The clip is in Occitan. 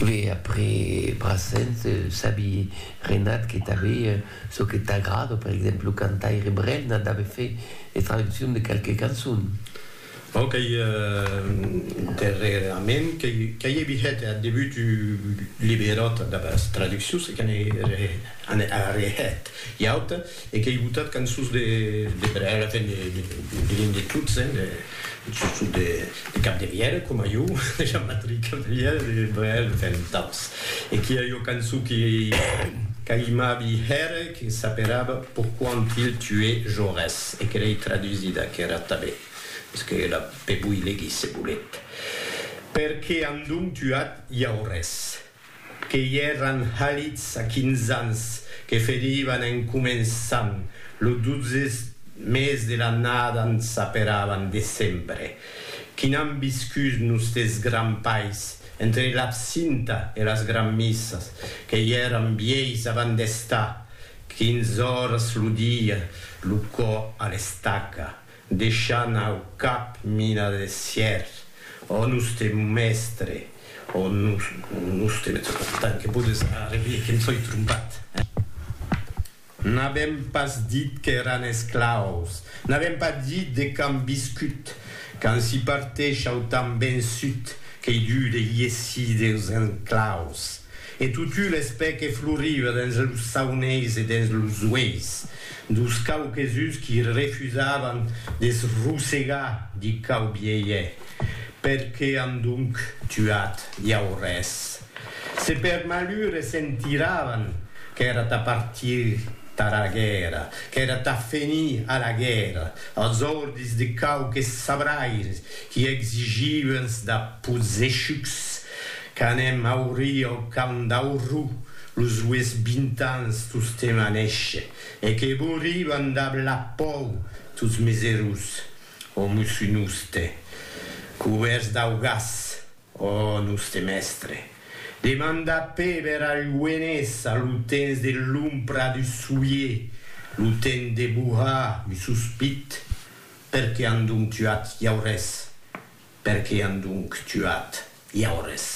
Ve après Brassens, sabi Renat que tanbe çò que t'agrada, per exemple lo cantaire Brel n'a dave fait de traduccion de qualque cançon. Bon qu'ei darrerament qu'ei evi hèt ath debut du liberòt damb as traduccions e que n'ei arrehèt ua auta. E qu'ei botat cançons de Brèra, enfin diguem de tots, hein, surtout de Capdevièlh, coma jo, de Jean-Patrick Capdevièlh, de Brel, enfin d'autres. E qu'i a ua cançon que qu'aimabi hèr, que s'aperava Pourquoi ont-ils tué Jaurès? e que l'ei tradusida, qu'èra tanben, es que la pe voi legir se volet, Perqué an donc tuat Jaurès? que i èran halits a quinze ans, que ferivan en començant, lo dotze mes de l'annada en s'aperavan decembre, qui n'an viscut nustes grands pais, entre l'absinta e las granmissas, que i èran vielhs avant d'estar quinze oras lo dia, lo cò a l'estaca. Deishant au cap mina de sièr, ò noste mèstre, ò noste metropolitan, que podes arrevier que em soi trompat, eh? N'avèm pas dit qu'èran esclaus, n'avèm pas dit de quand viscut, quand s'i parteish au temps vençut, qu'ei dur de iessir deus enclaus. E totun es pè que floriva dens los sauneis e dens los ueis, Dos cauquesus qui refusavan de's rosegar di cau vielhe, per que an donc tuat iau res? Se per malure sentiravan qu'èra tà partir tara guèrra, qu'èra tà fenir a la guèrra, als ordis de cauques sabraires qui exigiuens da pozechucs qu'anèm aurir au camp d'Aurrou, Los ues bintans tostemp a néisher, e que vos riban dab la pòu tots mes erós, ò mosso noste, cubèrts dau gas, ò noste mèstre, demanda pèber al luenés a lo temps de l'ompra du soier, lo temps de bohar un sospit, per que an donc tuat iau res? Per que an donc tuat iau res?